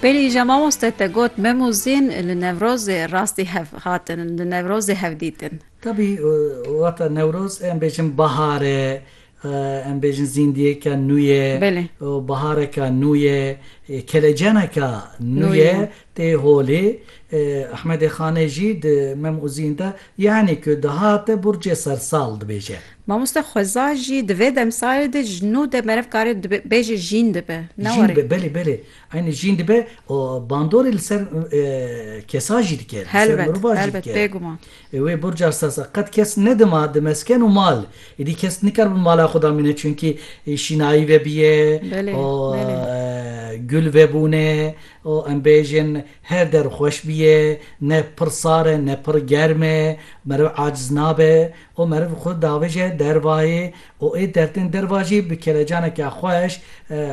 Pêlî îja mamoste te got mem û zîn li Newrozê rastî hev hatin li Newrozê hev dîtin. Tabî wata Newroz em bêjin bahar e. Em bêjin zîndiyêka nû ye û bihareka nû ye, keleceneka nû ye tê holê. Ehmedê Xanê jî di Mem û Zîn de yanî ku dihate burcê sersal dibêje. Mamoste Xweza jî di vê demsalê de ji nû de meriv kare bêje jîn dibe. Ne warê. Jîn dibe belê belê. Eynî jîn dibe û bandorê li ser kesa jî dike, li ser mirovan jî dike. Helbet, helbet bêguman. Ê wê burca sasa qet kes nedima di mesken û mal. Êdî kes nikar bi mala xwe da mîne çunkî şînayî vebîye û gul vebûne û em bêjin her der xweş bîye ne pir sar e ne pir germ e meriv aciz nabe û meriv xwe davêje dervayê û ê dertên derva jî bi kelecaneke xweş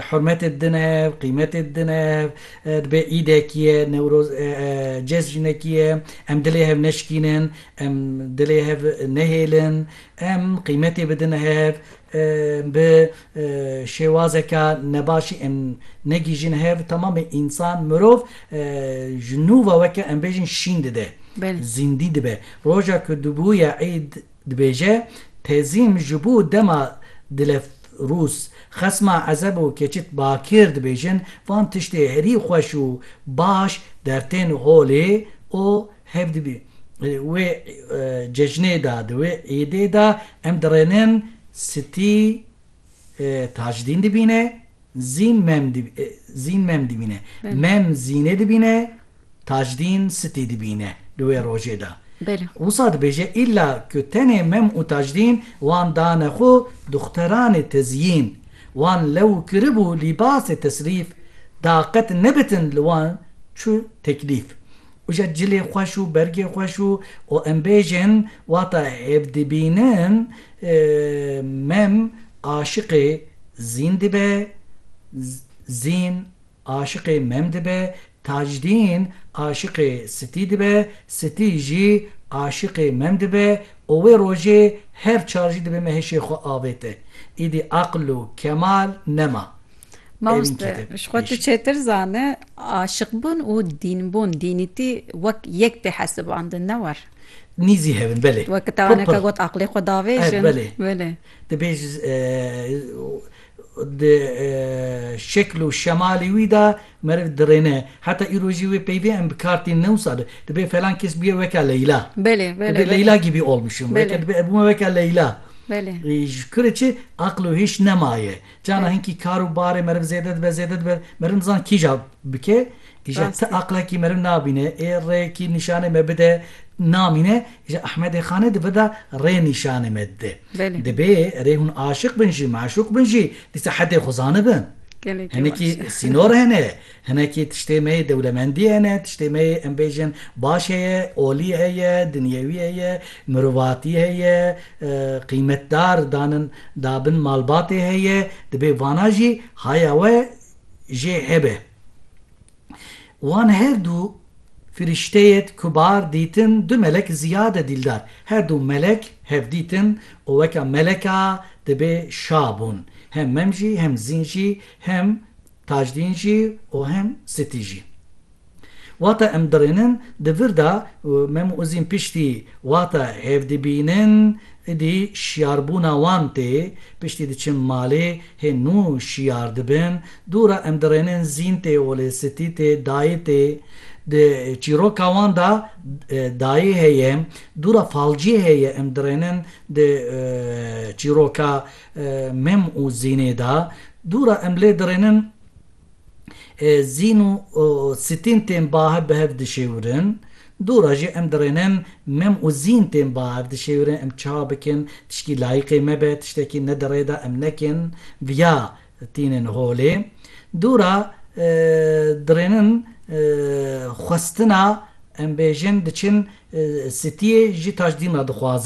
hurmetê dine, qîmetê dine, dibê îdekî ye, newroz e, cejnekî ye, em dilê hev neşikînin, em dilê hev nehêlin, em qîmetê bidin hev, bi şêwazeke nebaşî em negihîjin hev, temamê însan, mirov ji nû ve weke em bêjin şîn dide, zîndî dibe. Roja ku dibûye îd Dibêje, Tezîm ji bo dema dilef rûs, xesma ezeb û keçit bakir dibêjin, van tiştê herî xweş û baş dertên holê o hev dibî. Di wê cejnê de, di wê îdê de em dirênin stî Tajdîn dibîne, Zîn Mem Zîn Mem dibîne. Mem Zînê dibîne, Tajdîn Sitî dibîne di wê rojê de. Wisa dibêje îlla ku tenê Mem û Tajdîn wan dane xwe duxteranê tezîn. Wan lew kiribû lîbasê tesrîf da qet nebitin li wan çû teklîf. Uca cilê xweş û bergê xweş û û em bêjin wata hêvdibînin mem aşiqê zîn dibe zîn aşiqê mem dibe tajdîn aşiqê sitî dibe sitî jî aşiqê mem dibe û wê rojê her çar jî dibe me hêşê xwe avête îdî aql û kemal nema Mamoste, ji xwe tu çêtir zane, aşiqbûn û dînbûn, dînîtî wek yek tê hesibandin, ne war? Nîzî hev in, belê. Wek tawaneke got aqilê xwe davêjin. Belê. Belê. Dibêj di şekil û şemalê wî de meriv dirêne. Heta îro jî wê peyvê em bi kar tînin, ne wisa be. Dibe falan kes bûye weke Leyla. Belê, belê. Dibe Leyla gîbî olmuşum. Weke dibe ev bûme weke Leyla. Belê. Ji kurê çi aqil û hêş nemaye. Cana hinkî kar û barê meriv zêde dibe, zêde dibe, meriv nizan kîja bike, îja ti aqlekî meriv nabîne, ê rêyekî nîşanê me bide namîne, îja Ehmedê Xanê di vir de rê nîşanê me dide. Dibê erê hûn aşiq bin jî, meşûq bin jî dîsa hedê xwe zanibin. Hinekî sînor hene. Hinekî tiştê me yê dewlemendî hene, tiştê me yê em bêjin baş heye, olî heye, dinyewî heye, mirovatî heye, qîmetdar danin dabin malbatê heye, dibê vana jî haya we jê hebe. Wan her du firîşteyêd kubar dîtin du melek ziyade dîldar. Her du melek hev dîtin û weka meleka dibê şa bûn. Hem mem jî hem zîn jî hem Tajdîn jî û hem Sitî jî. Wata em dirênin di vir de û Mem Uzîn piştî wata hevdibînin idî şiyarbûna wan tê, piştî diçin malê hê nû şiyar dibin, dûra em dirênin Zîn tê û lê Sitî tê, Dayê tê. Di çîroka wan de dayê heye, dûra falcî heye em dirênin di çîroka. Mem û Zînê de dû re em lê dirênin Zîn û Sitîn tên bahev bi hev dişêwirin. Dû re jî em dirênin Mem û Zîn tên bahev dişêwirin. Em çiha bikin tişkî layîqê me be, tiştekî ne di rê de em nekin viya tînin holê. Dû re dirênin xwestina em bêjin diçin sitiyê ji taşdîn re dixwazin.